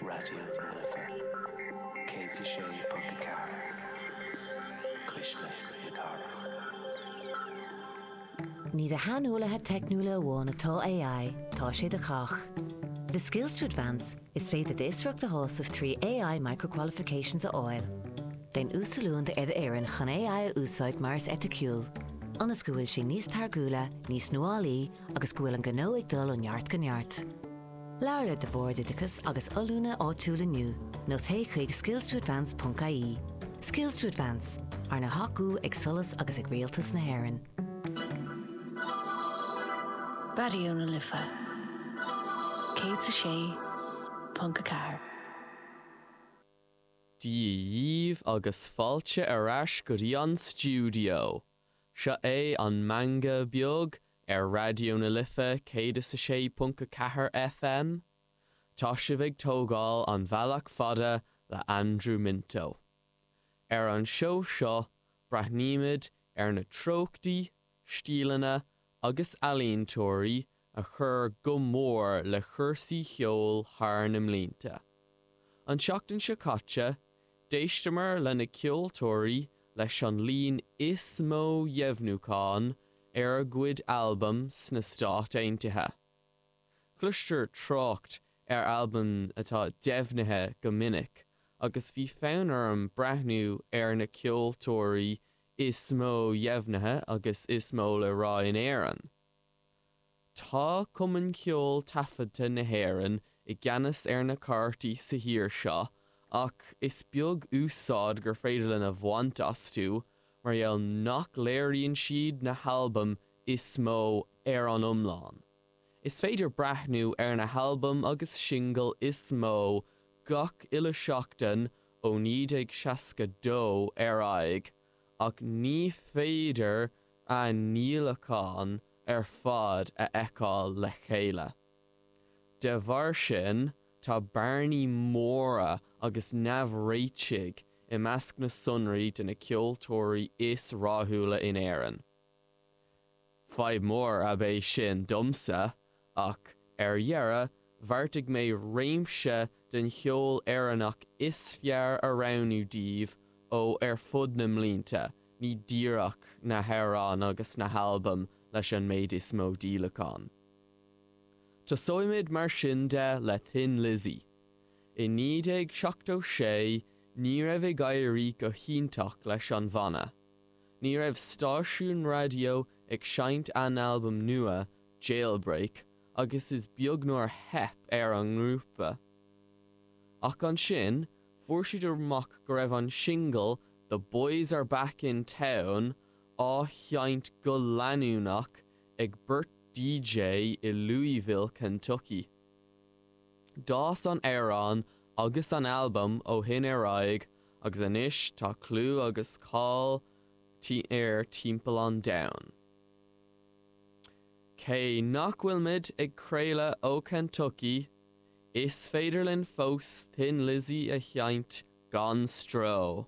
Raidió na Life 106.4, cuisle na cathrach. Ní do shaineolaithe teicniúla amháin atá AI, tá sé do chách. Le Skills to Advance, is féidir d'fhiosracht a shásamh trí AI Micro-Qualifications a fháil. Déan uasoiliúint ar do fhoireann chun AI a úsáid mar is eiticiúil, ionas go bhfuil sí níos táirgiúla, níos nuálaí, agus go bhfuil an gnó ag dul ó neart go neart. Labhair le do Bhord Oideachais agus Oiliúna áitiúil inniu nó téigh chuig skillstoadvance ponc ie. Skills to Advance, arna thacú ag SOLAS agus ag Rialtas na hÉireann. Raidió na Life 106.4. Dia dhíbh agus fáilte ar ais go dtí an stiúideo! Seo é an Meangadh Beag ar Raidió na Life 106.4 FM. Tá sibh ag tógáil an bhealach fada le Andrew Minto. Ar an seó seo, breathnaímid ar na treochtaí, stíleanna agus ealaíontóirí a chur go mór le cúrsaí cheoil thar na mblianta. An tseachtain seo caite, d'éisteamar leis na ceoltóirí leis an líon is mó dheimhniúcháin ar a gcuid albam sna Stáit Aontaithe. Cloistear trácht ar albaim atá deimhnithe go minic agus bhí fonn orm breathnú ar na ceoltóirí is mó dheimhnithe agus is mó le rá in Éirinn. Tá Cumann Ceoil Taifeadta na hÉireann i gceannas ar na cairteacha sa thír seo ach is beag úsáid gur féidir linn a bhaint astu mar gheall nach léiríonn siad na halbaim is mó ar an iomlán. Is féidir breathnú ar na halbaim agus singil is mó gach uile sheachtain ó 1962 ar aghaidh, ach ní féidir a ndíolacháin ar fad a fheiceáil le chéile. De bharr sin, tá bearnaí móra agus neamhréitigh i measc na sonraí de na ceoltóirí is rathúla in Éirinn. Fadhb mhór ab é sin domsa ach ar dheireadh bheartaigh mé réimse den cheol Éireannach is fearr a roghnú daoibh ó ar fud na mblianta, ní díreach na hamhráin agus na halbaim leis an méid is mó díolachán. Tosóimid mar sin de le Thin Lizzy. I 1976 ní raibh ag éirí go hiontach leis an bhanna, Ní raibh stáisiún raidió ag seinnt a n-albam nua, Jailbreak, agus is beag nár theip ar an ngrúpa. Ach ansin, fuair siad amach go raibh an singil The Boys Are Back In Town á sheinnt go leanúnach ag beirt DJ i Louisville, Kentucky. D'fhás an t-amhrán agus an albam ó shin ar aghaidh agus anois tá clú agus cáil air timpeall an domhain. Cé nach bhfuil muid ag craoladh ó Kentucky, is féidir linn fós Thin Lizzy a sheinnt gan stró!